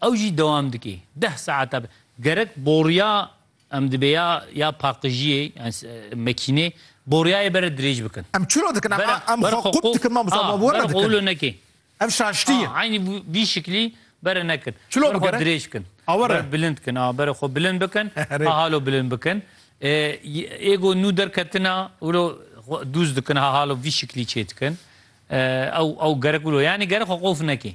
Ew jî dewam dike. Deh saeta be. Gerek boriya em dibê ya ya paqijiyê yani mekînê boriyayê bere dirêj bikin. Em çi ro dikin? Em em xwe qûp dikin mamosta wan were dikin. Qûlo nekin. Ev şaştî ye. Eynî vî şiklî bere nekin. Çi lo bere dirêj bikin. Bere bilind bikin. Bere xwe bilind bikin. Hahalo bilind bikin. Ê ku nû derketina wilo dûz dikin hahalo vî şiklî çêdikin. Ew ew gerek wilo. Yanî gerek xwe qof nekin.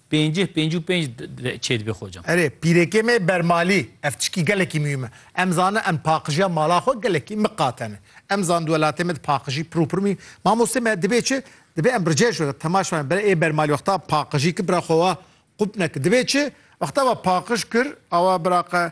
Pêncih, pêncî û pênc çêdibê xocam. Erê pîrêkê me bermalî ev tişkî gelekî muhîm e. Em zanin em paqijiya mala xwe gelekî miqatene. Em zanin di welatê me di paqijî pir û pir muhîm. Mamostê me dibê çi? Dibê em birceh ji temaşa me bire ê bermalî wexta paqijî kir bira xwe wa qûp nekir. Dibê çi? Wexta we paqij kir awa bira xwe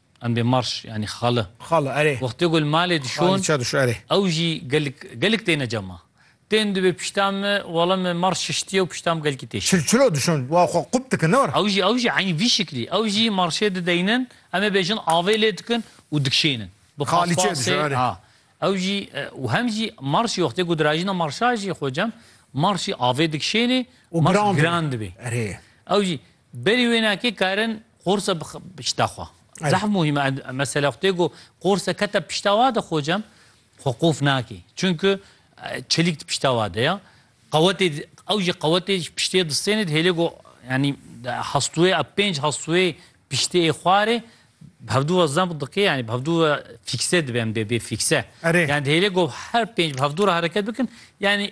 Em bê marş yanî xali. Xali, erê. Wextê ku li malê dişon. Xali ça dişo, erê. Ew jî gelk gelk têne cema. Tên dibê pişta me, wala me marş şiştiye û pişta me gelkî tê şişt. Çilçilo dişon, wa xwe qûp dikin, ne were? Ew jî ew jî eynî vî şiklî. Ew jî marşê dideynin, em ê bêjin avê lê dikin û dikişênin. Bi Xali çê paspasê, dişo, erê. ha. Ew jî û hem jî marşî wextê ku dirajîna marşa jî xwe cem, marşî avê dikişênê, Û marş giran dibê. giran dibê. Erê. Ew jî Berî wênakê karin qorsa pişta xwe. Zehf muhîm e. Mesela xwe tê got qorsa kete pişta wa de xocem xwe qof nake. Çunku çelîk di pişta wa de ya. Qewetê ew jî qewetê ji piştê distêne dihêle got yanî hestûyê ev pênc hestûyê piştê ê xwarê bi hevdu re zam dike yanî bi hevdu re fîkse dibe em dê bê fîkse. Erê. Yanî dihêle got her pênc bi hevdu re hereket bikin yanî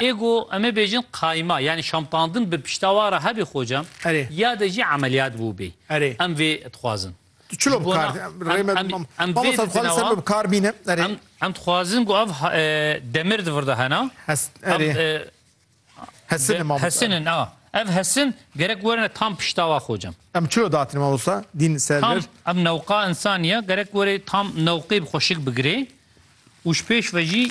Ê ku em ê bêjin qayma yanî şampandin bi pişta wa re hebî xocam ya de jî emeliyat bûbî. Em vê dixwazin. Tu çilo bi kar Mamosta dixwazin ser min bi kar bîne. Em dixwazin ku ev demir di vir de hene. Hesinin a ev hesin gerek werine tam pişta wa xocam. Em çilo datin mamosta dîn ser vir. Ev newqa insaniye gerek were tam newqê bi xwe şik bigirê û ji pêş ve jî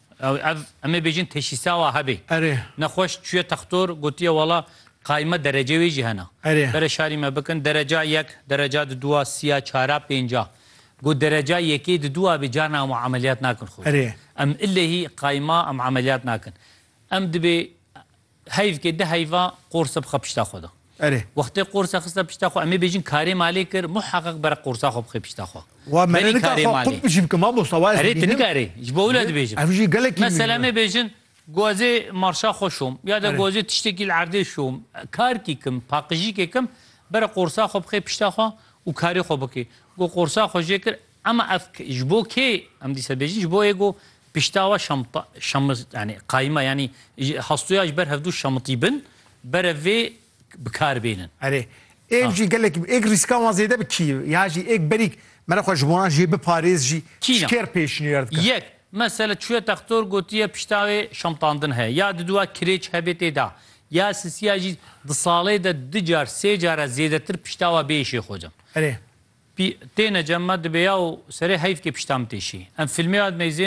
Ew ev em ê bêjin teşîsawa hebê. Erê. Nexweş çûye textor gotiye wala qayme derece wê jî hena. Erê. Bere şarî me bikin dereca yek, dereca di dûa sîya çara pênca. Got dereca yekê di dûa bê carna em emeliyat nakin xwe. Erê. Em illehî qayma em emeliyat nakin. Em dibê. Heyv ke di heyva qorsa bixe pişta xwe de. Erê. Wextê qorsa xiste pişta xwe em ê bêjin karê malê kir muheqeq bere qorsa xwe bixê pişta xwe. Wa me ne nika xwe qut jî bikim mamosta wa ez dibînim. Erê tu nikarî ji bo wila dibêjim. Ev jî gelekî mî. Mesela em ê bêjin gozê marşa xwe şom ya de gozê tiştekî li erdê şom karkî kim paqijîkê kim bere qorsa xwe bixê pişta xwe û karê xwe bikê. Got qorsa xwe jê kir Ema ev ji bo kê? Em dîsa bêjin ji bo yê ku pişta we şamit yanî qayma yanî hastoya ji ber hevdu şamitî bin bere vê bi kar bênin. Erê, êk jî gelek êk rîskan wan zêde bi kî ya jî êk berîk mere xwe ji wan jê biparêz jî ji kê re pêşniyar dike? Yek, mesela çûye textor gotiye pişta wê şamtandin heye ya diduwa kirêç hebê tê da ya sisiya jî di salê de di car sê care zêdetir pişta we bê îşê xwe cem. Erê. Pî têne cem ma dibêya û serê heyf kê pişta min tê şî. Em filmê ya